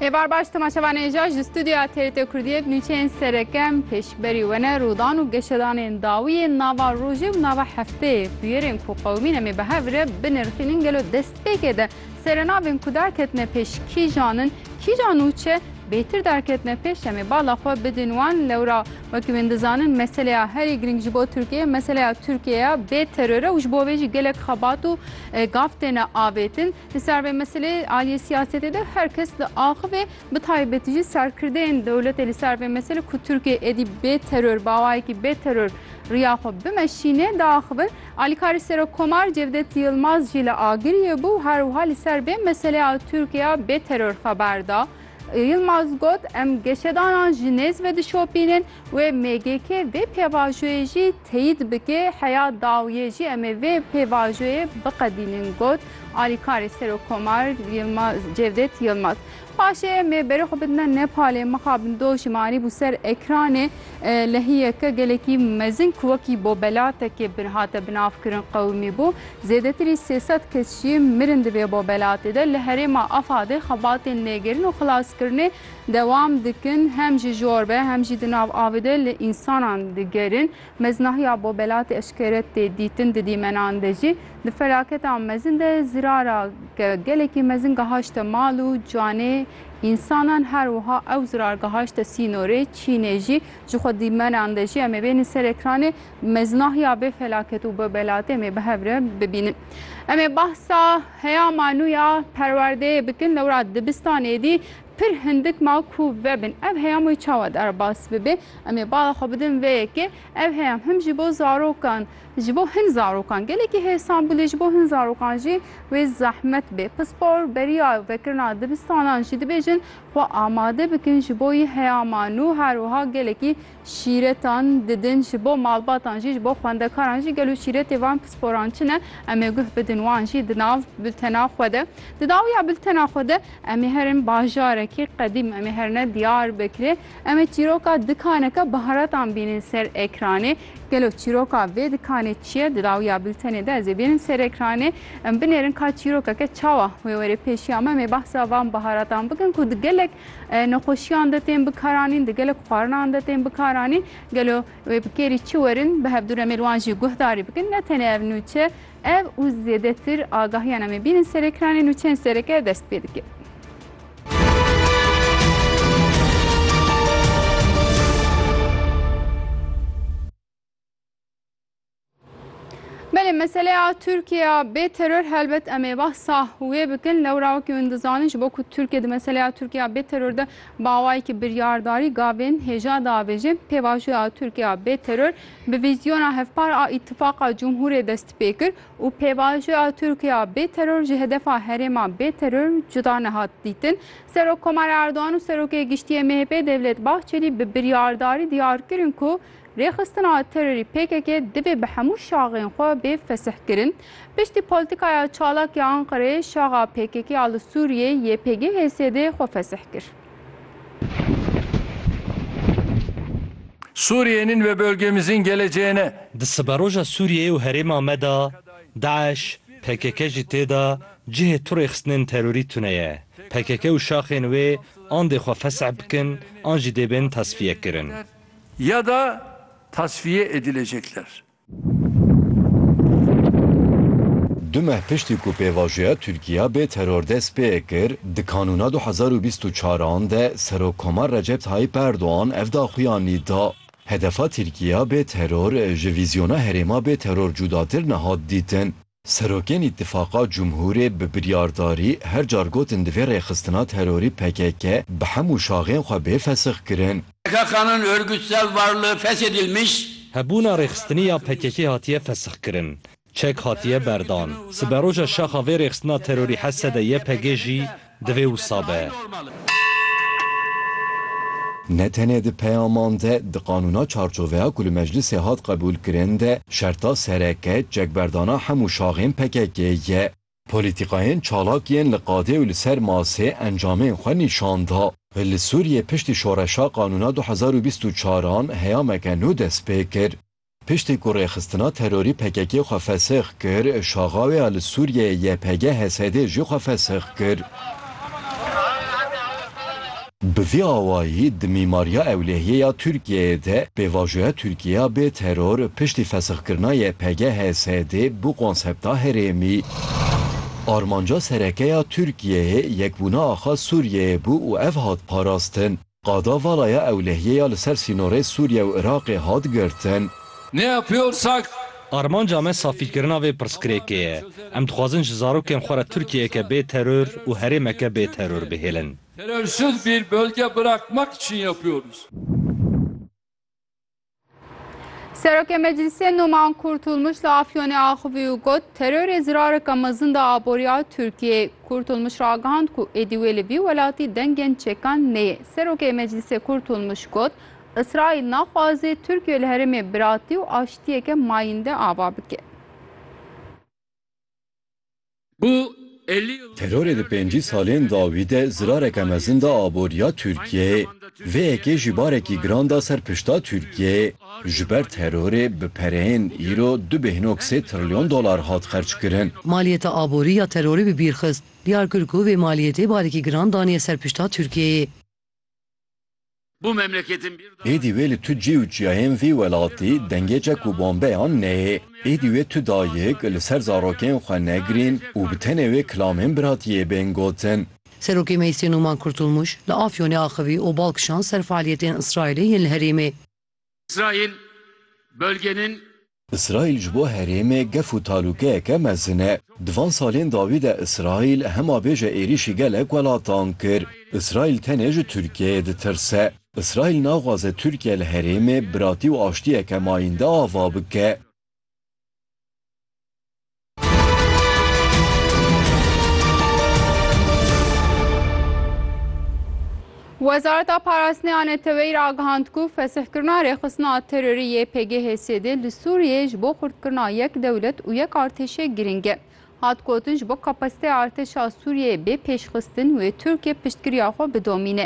Hêvar baş temaşevanên ja ji stûdyoya TRT Kurdiyê bi nûçeyên serekem pêşberî we ne rûdan û geşedanên dawî yên nava rojê û nava hefteyê bûyerên ku qewimîn em ê bi hev re binirxînin gelo destpêkê de serenavên ku derketine pêş kîjan in kîjan û çi bêtir derketine pêş em ê bala xwe bidin wan lewra wekî wên dizanin meseleya herî girîng ji bo Tirkiyeyê meseleya Tirkiyeya bê terore û ji bo vê jî gelek xebat û gav têne avêtin. Li ser vê meselê aliyê siyasetê de her kes li axivê bi taybetî jî serkirdeyên dewletê li ser vê meselê ku Tirkiyê êdî bê teror bawayekî bê teror riya xwe bimeşîne diaxivin. Alîkarê Serokkomar Cevdet Yilmaz jî li Agiriyê bû û her wiha li ser vê meseleya Tirkiya bê teror xeber da. Yilmaz got, Em geşedanan ji nêz ve dişopînin. Wê MGK vê pêvajoyê jî teyîd bike, heya dawiyê jî em ê vê pêvajoyê biqedînin, got alîkarê Serokkomar Yilmaz Cevdet Yilmaz. Paşê em ê berê xwe bidime Nepalê, mixabin doji me anîbû ser ekranê lehiyeke gelekî mezin ku wekî bobelatekê hate binavkirin qewimî bû. Zêdetirî sê sed kes jî mirin di vê bobelatê de. Li herêma Afadê xebatên lêgerin û xilaskirinê Dewam dikin, hem ji jor ve hem jî di nav avê de li însanan digerin. Meznahiya bo belatî eşkere tê dîtin di dîmenan de jî. Di felaketa mezin de zirara gelekî mezin gehaşte mal û canê însanan her wiha ew zirar gehaşte sînorê Çînê jî. Jixwe dîmenan de jî em ê bênîn ser ekranê meznahiya vê felaket û vê belatê em ê bi hev re bibînin. Em ê behsa Heya ma nûya perwerdeyê bikin lewra dibistanê dî pir hindik ma ku vebin ev heyam wê çawa derbas bibe. Em ê bala xwe bidin vê yekê. Ev heyam him ji bo zarokan ji bo hin zarokan gelekî hêsan bû lê ji bo hin zarokan jî wê zehmet bê. Pispor beriya vekirina dibistanan jî dibêjin xwe amade bikin ji bo yi heya ma nû her wiha gelekî Şîretan didin ji bo malbatan jî ji bo xwendekaran jî gelo şîretê van pisporan çi ne em ê guh bidin wan jî di nav bultena xwe de di dawiya bultena xwe de em ê herin bajarekî qedîm em ê herine Diyarbekirê em ê çîroka dikaneke baharatan bînin ser ekranê gelo çîroka vê dikanê çi ye di dawiya bultenê de ez ê bînin ser ekranê em binêrin ka çîrokeke çawa wê werê pêşiya me em ê behsa van baharatan bikin ku di gelek nexweşiyan de tên bikaranîn, di gelek xwarinan de tên bikaranîn. Gelo wê bi kêrî çi werin bi hevdû re mêr wan jî guhdarî bikin. Ne tenê ev nûçe, ev û zêdetir agahiyan em ê bînin serê kiranê nûçeyên sereke dest pê dike. Belê meseleya Tirkiye bê teror helbet em ê behsa wê bikin lewra wekî min dizanin ji bo ku Tirkiye di meseleya Tirkiye bê teror de bawayekî biryardarî gavên hêja diavêje pêvajoya Tirkiye bê teror bi vîzyona hevpar a îtifaqa cumhûrê dest pê kir û pêvajoya Tirkiye bê teror ji hedefa herêma bê teror cuda nehat dîtin Serokkomara Erdogan û Serokê Giştî yê MHP'ê Devlet Bahçelî bi biryardarî diyar kirin ku Rêxistina terorî pkk divê bi hemû şaxên xwe bê fesihkirin. Piştî polîtîkaya çalak ya Enqereyê şaxa pkk ya li Sûriyeyê YPG HSD xwe fesih kir. Suriye'nin ve bölgemizin geleceğine. Di siberoja Sûriyeyê û herêma me de DAIŞ, pkk jî tê de cihê tu rêxistinên terorî tune ye. Pkk û şaxên wê an dê xwe fesih bikin an jî dê bên tesfiyekirin. ya da tasfiye edilecekler. Du meh piştî ku pêvajoya Tirkiya bê teror dest pê kir, di kanûna du hezar û bîst û çar an de Serokkomar Recep Tayyîp Erdogan ev daxuyanî da. Hedefa Tirkiya bê teror ji vîzyona herêma bê teror cudatir nehat dîtin. Serokên Îtîfaqa Cumhûrê bi biryardarî her car gotin divê rêxistina terorî pkk bi hemû şaxên xwe bê fesixkirin. Pkk-nın örgütsel varlığı feshedilmiş. Hebûna rêxistinî ya pkk hatiye fesixkirin. Çek hatiye berdan. Siberoja şaxa vê rêxistina terorî Hesede-YPG jî Divê wisa be. Ne tenê di peyaman de, di qanûna çarçoveya ku li meclisê hat qebûlkirin de şerta sereke çekberdana hemû şaxên PKK'ê ye. Polîtîkayên çalak yên li qadê û li ser masê encamên xwe nîşan da. Li Sûriyê piştî şoreşa qanûna du hezar û bîst û çar an heyameke nû dest pê kir. Piştî ku rêxistina terorî PKK'ê xwe fesix kir, şaxawê ya li Sûriyeyê YPG HSD'ê jî xwe fesix kir. Bi vî awayî di mîmariya ewlehiyê ya Tirkiyeyê de pêvajoya Tirkiyeya bê teror piştî fesixkirina YPG HSD'ê bû konsepta herêmî. Armanca sereke ya Tirkiyeyê yekbûna axa Sûriyeyê bû û ev hat parastin. Qada vala ya ewlehiyê ya li ser sînorê Sûriye û Iraqê hat girtin. Ne yapıyorsak? Armanca me safîkirina vê pirsgirêkê ye. Em dixwazin ji zarokên xwe re Tirkiyeyeke bê teror û herêmeke bê teror bihêlin. Terörsüz bir bölge bırakmak için yapıyoruz. Serokê Meclisê Numan Kurtulmuş li Afyonê axivî û got terorê zirareka mezin da aboriya Tirkiyeyê. Kurtulmuş ragihand ku êdî wê li vî welatî dengên çekan neyê. Serokê Meclisê Kurtulmuş got Îsraîl naxwaze Tirkiye li herêmê biratî û aştiyeke mayînde ava bike. Terorê di pêncî salên dawî de zirareke mezin da aboriya Tirkiyeyê. Vê yekê jî barekî giran da ser pişta Tirkiyeyê. Ji ber terorê bi pereyên îro du bêhnok sê trilyon dolar hat xerckirin. Maliyeta aborî ya terorê bi bîr xist. Diyar kir ku vê maliyetê barekî giran daniye ser pişta Tirkiyeyê. Êdî wê li tu cî û çiyayên vî welatî dengê çek û bombeyan neyê. Êdî wê tu dayik li ser zarokên xwe negrîn û bi tenê wê kilamên biratiyê bên gotin. Serokê Meysyê Numan Kurtulmuş, li Afyonê axivî û bal kişand ser fealiyetên Îsraîlê yên li herêmê. Îsraîl bölgenin. Îsraîl ji bo herêmê gef û talûkeyeke mezin e. Di van salên dawî de Îsraîl hema bêje êrîşî gelek welatan kir. Îsraîl tenê ji Tirkiyeyê ditirse. Îsraîl naxwaze Tirkiye li herêmê biratî û aştiyeke mayînde ava bike. Wezareta Parastinê a Neteweyî re agihand ku fesihkirina rêxistina terorî yê PGHS'd li Sûriyeyê ji bo xurtkirina yek dewlet û yek artêşê girîng e. Hat gotin ji bo kapasiteya artêşa Sûriyeyê bê pêşxistin wê Tirkiye piştgiriya xwe bidomîne.